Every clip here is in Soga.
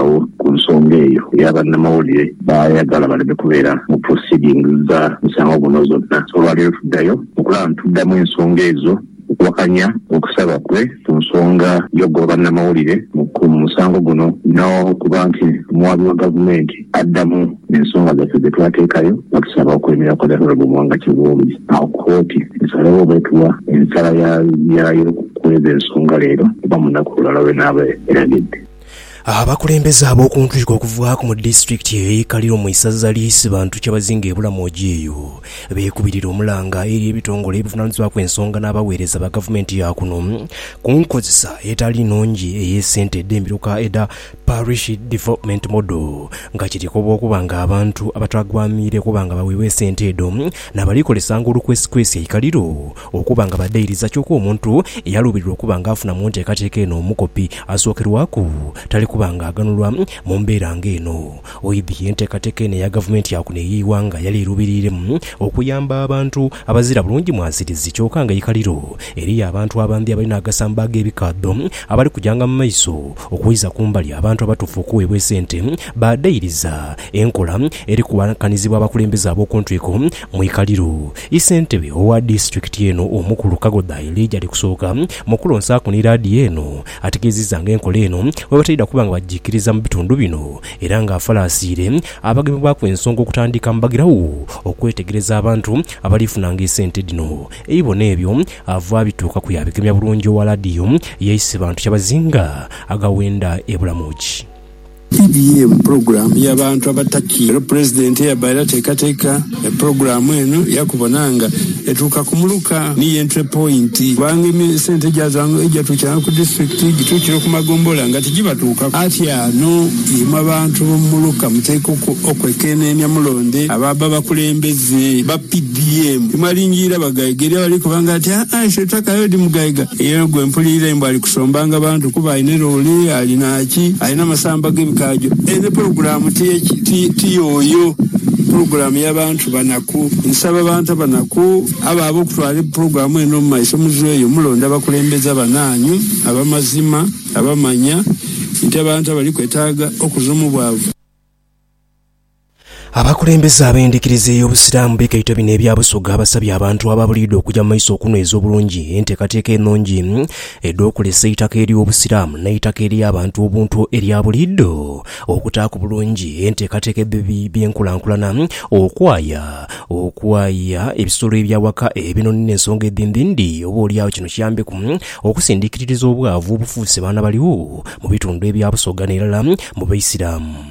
agho ku nsonga eyo eya bannamawulire baayagala baleme kubeera mu proceedings dha musango guno zonna. Olwaleero tuddayo okulaba nituddamu ensonga ezo okuwakanya okusaba kwe ku nsonga y'okugoba bannamawulire ku musango guno n'okuba nti omuwaabi wa gavumenti addamu ensonga zaffe dhe twateekayo nga tusaba okwemera kwa The Honourable Muwanga Kivumbi agho kkooti esalewo oba etuwa ensala yaayo kw'ezo ensonga leero oba mu lunaku olulala lw'enaaba eragidde. Abakulembeze ab'oku ntwiko okuvaaku mu disitulikiti eyo ey'e Kaliro mu isaza ly'e Isibantu Kyabazinga e Bulamoji eyo beekubirira omulanga eri ebitongole ebivunaanyizibwaku ensonga n'abaweereza ba gavumenti ya kuno ku nkozesa etali nnungi ey'esente edh'emiruka edha Parish Development Model nga kirikoba okuba nga abantu abatagwamiire okuba nga baweebwa esente edho nabalikoresanga olukwesikwesi e Kaliro Okuba nga badhairiza kyoka omuntu eyaluubirirwa okuba nga afuna mu nteekateeka eno omukopi asookerwaku, tali kuba nga aghanulwa mu mbeera nga eno. Oidhi ye nteekateeka eno eya gavumenti ya kuno ey'eighanga yali eruubiriiremu okuyamba abantu abazira bulungi mwasirizi kyoka nga ikaliro eriyo abantu abandhi abalina agasamba ag'ebikaadho abali kujanga mu maiso okwiza ku mbali abantu abatuufu okuweebwa esente badhairiza enkola eri kuwakanizibwa abakulembeze ab'oku ntwiko mu ikaliro Isentebe owa disitulikiti eno omukulu Kagodha Elijah Alikusooka mu kulonsaaku ni laadiyo eno ategeezizza nga enkola eno bwebataidha kuba nga bajiikiriza mu bitundu bino era nga afalaasiire abagemebwaku ensonga okutandika mbagirawo okwetegereza abantu abaliifunanga esente dhino eibo n'ebyo ava abituukaku yabigemya bulungi owa laadiyo yaise bantu kyabazinga agawenda e Bulamoji. PBM, Pulogulaamu ya bantu abataki alo Pulezidenti eyabaire ateekateeka pulogulaamu eno yaakubona nga etuuka ku muluka ni y'entry point kubanga esente gyazo egyatuukiranga ku disitulikiti gituukira ku magombolola nga tigibatuukaku. Ati ano imwe abantu b'omu muluka muteekwa okwekeneenia mulonde abaabba abakulembeze ba PBM. Timwalingiira bagaiga. Eriyo abali kukoba nga ati, Aa, ife tutakaayodi mugaiga. Eyo gwe mpulirira mbu ali kusombanga bantu kuba alina loole, alina. Ki, alina amasamba g'ebikajo. Eyo ni pulogulaamu, ti, ti, ti yooyo pulogulaamu ya bantu banaku. Nsaba abantu abanaku abo abo okutwala pulogulaamu eno mu maiso, muzweyo mulonde abakulembeze abanaanyu ab'amazima, abamanya nti abantu abali kwetaaga okuza omu bwavu. Abakulembeze ab'endhikiriza ey'Obusiraamu bikaito bino ebya Busoga abasabye abantu ababuliidwa okuja mu maiso okunhweza obulungi enteekateeka enhungi edh'okulesa eitaka ery'Obusiraamu n'eitaka ery'abantu obuntu erya buliidho okutaaku bulungi enteekateeka edh'ebi by'enkulankulana okwaya okwaya ebisolo eby'awaka, ebinhonhi n'ensonga edhindhindhi oba olyagho kino kiyambeku okusindikiririza obwavu obufuuse baana baligho mu bitundu ebya Busoga n'erala mu Baisiraamu.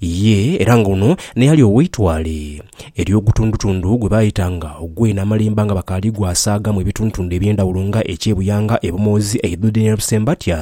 Ye era nga ono naye ali ow'eitwale ery'ogutundutundu gwe baayetanga ogw'e Namalemba nga bakaali gwasaagamu ebitundutundu eby'endhawulo nga eky'e Buyanga, e Bumoozi, e Idhudha n'e Busembatya.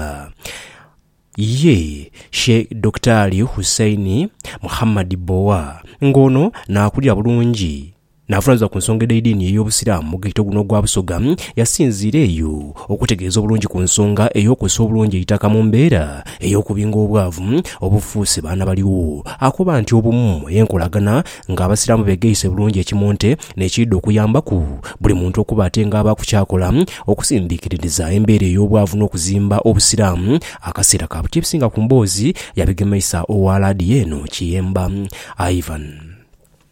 Ye Sheikh Dokitaali Hussein Muhammad Bbowa nga ono naakulira bulungi N'avunaanyizibwa ku nsonga edh'eidiini ey'Obusiraamu mu ghetto guno ogwa Busoga, yasinziira eyo okutegeeza obulungi ku nsonga ey'okukozesa obulungi eitaka mu mbeera ey'okubinga obwavu obufuuse baana baligho. Akoba nti obumu y'enkolagana ng'Abasiraamu beegaise bulungi ekimonte n'ekiidha okuyambaku buli muntu okuba ate ng'abaaku ky'akola okusindiikiririza embeera ey'obwavu n'okuzimba Obusiraamu akaseera ka buti. Ebisinga ku mboozi yabigemeisa owa laadiyo eno Kiyemba Ivan.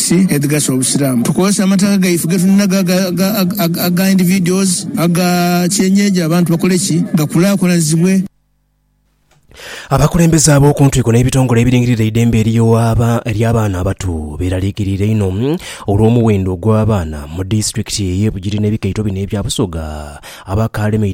Ki edhigasa Obusiraamu? Tukozesa amataka gaife getulinagho aga aga individuals, aga kyenyeji abantu bakole ki gakulakulanizibwe? Abakulembeze ab'okuntwiko n'ebitongole ebiringirira eidembe ery'abaana abato beraliikiriire inho olw'omuwendo ogw'abaana mu disitulikiti ey'e Bugiri n'ebikaito bino ebya Busoga abakaalemeire